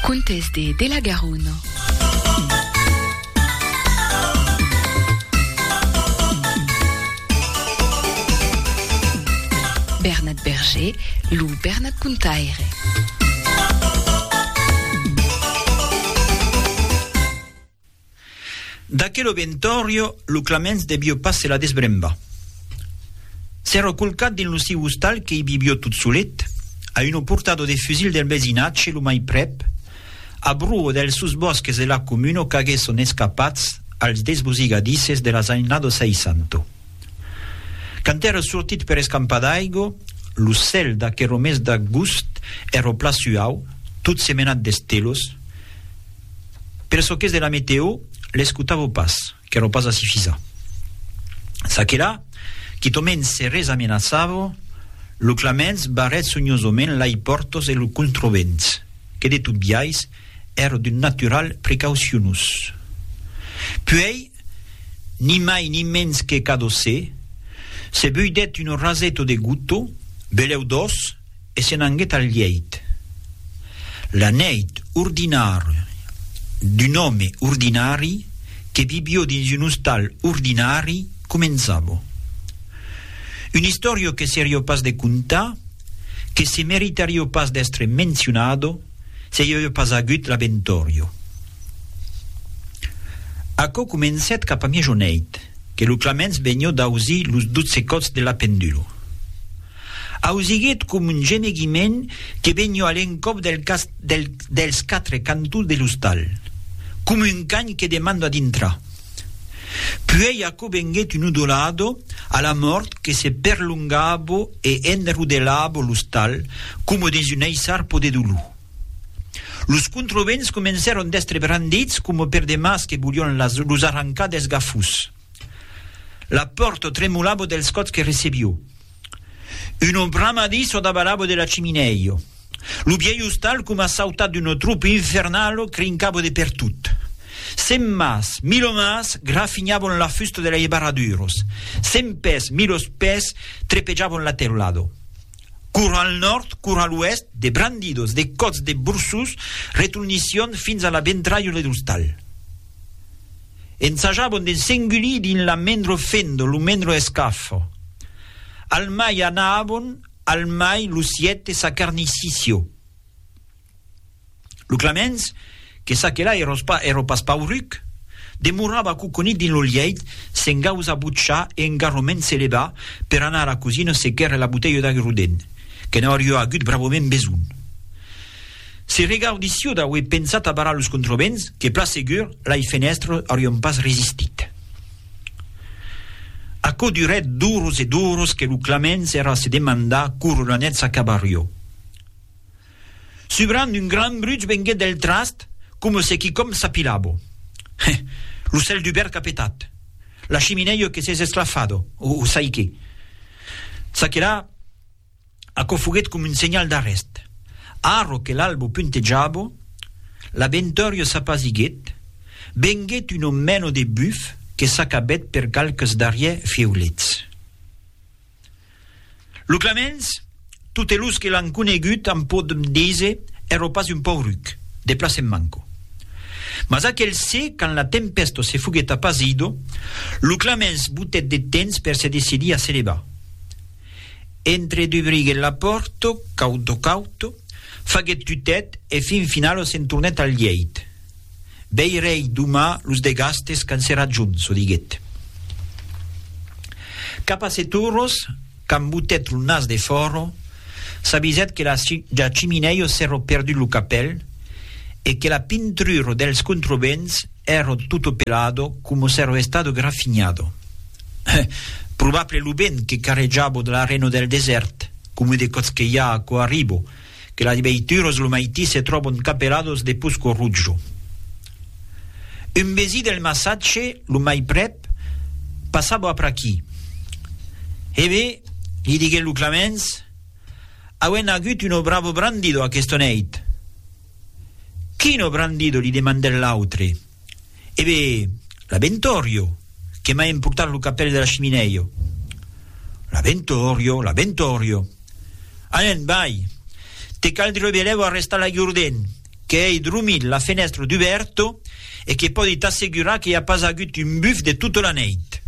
Contes de de la Garona. Bernat Berger, lo Bernat Contaire. D'aquel obentorio lo Claments debió pas se la desbrembar. S'èra colcat dins lo siu ostal que i vivió tot solet, a uno portador de fusil del vesinatge lo mai prèp, a bruo dels sus bòsques de la comuna qu'agué son escapats als desbosigadisses de las anys nado seisanto. Quand èra sortit per escampar d'aigo, lo cèl d'aquero mes d'agust èra pla suau, tot semenat d'estelos, Per çò qu'es de la meteo, l'escotavo pas, qu'èro pas a sifisar. Çaquelà, quitòment serrés amenaçavo, lo claments barrèt sonhosament lai pòrtos e lo controbents, que de tot biais èro d'un natural precaucionós. Puèi, ni mai ni mens que cadó se, se beudèt un orraseto de gotó, belèu dòç, E se n'anguèt al lièit. La nèit ordinària d'un òme ordinari que vivió dins un ostal ordinari començava. Una istòria que serió pas de contar, que se meritarió pas d'èstre mencionada se i avió pas agut la Ventòria. Aquò comencèt cap a miejoneit, que lo claments venió d'ausir los dotze còps de la pendula. Ausiguèt com un gemeguiment que vegnió a l'encòp dels quatre cantons de l'ostal, com un can que demanda dintrar. Puèi aquò venguèt un udolado a la mòrt que se perlongavo e enrodelavo l'ostal coma dins un aissarpo de dolor. Los controvents comencèron d'èstre brandits coma per de mas que volión los arrancar dels gafós. La pòrta tremolava dels còps que recebió. Una bramadi çò davalava de la chiminèia. Lo vièlh ostal coma sautat d'una tropa infernala crincava de pertot. Cent mas, mil omas grafinhavan la fusta de lei barraduras. Cent pès, mil ospès trepejavan la teulada. Cor al nòrd, cor a l'oèst, de brandidas, de còps de borsós retornissián fins a la ventralha de l'ostal. Ensajabon de s'engulir dins la mendro fendo, lo mendro escafo. Al mai anabon, al mai lo siète sa carniciscio. Lo Clamens, que ça que là eros pas, ero pas pauruc, demorava coconit dins lo lièit, s'engausa butchar e engarroment se levar per anar a la cosina se quèrre la botelha d'agrudent, que n'aurió agut bravament besonh. Se regaudissi o d'auer pensat abarar los controvents, que plan segur, lai fenèstres aurion pas resistit. Aquò durèt d'oros e d'oros que lo Claments èra a se demandar quora la net s'acabarió. Subrant un gran bruch venguèt del trast, coma se quicòm s'apilabo. Heh! Lo cèl dubèrt qu'a petat! La chiminèio que s'es esclafado! O sai qué! Ça que la! Aquò foguèt com un senhal d'arrèst. Arro que l'albo puntejabo, l'abentòrio s'apasiguèt, venguèt un omèno de buf que s'acabèt per qualques darrièr fiulets. Lo Clamens, totes los que l'an conegut an pòt dise, èrò pas un pauruc, de plaç en manco. Mas aquel se, quand la tempèsto se foguèt apasido, lo Clamens botèt de temps per se decidir a se levar. Entre dubriguèt la pòrta, cauto cauto, faguèt tutèt e fin finalo se'n tornèt al lièit. Veirèi doma los de Gastes quand serà junt, çò diguèt. Cap a sèt oras, quand botèt lo nas defòra, s'avisèt que la ja chiminèia s'èra perdut lo capèl e que la pintrura dels contrebens Ero tutto pelado como s'ero estado grafignado. Heh! Probable lo vent que carrejabo de l'arreno del desèrt, como de còts que i a aquò arribo, que las veituras lo maití se tròbon capelados de pusco rutjo. Un vesí del massatge, lo mai prèp, passabo apr'aquí. He be, li diguèt lo Clamens, auem agut uno bravo brandido aquesta nèit. Quino Brandido li demandèt l'autre. E be, l'Abentorio, que m'a emportat lo capèl de la chiminèio. L'Abentorio, l'Abentorio. Anen, vai! Te cal dire belevo a restar la Gurden, qu'ei drumit la fenèstra dubèrto e que pòdi t'assegurar que i a pas agut un buf de tota la nèit.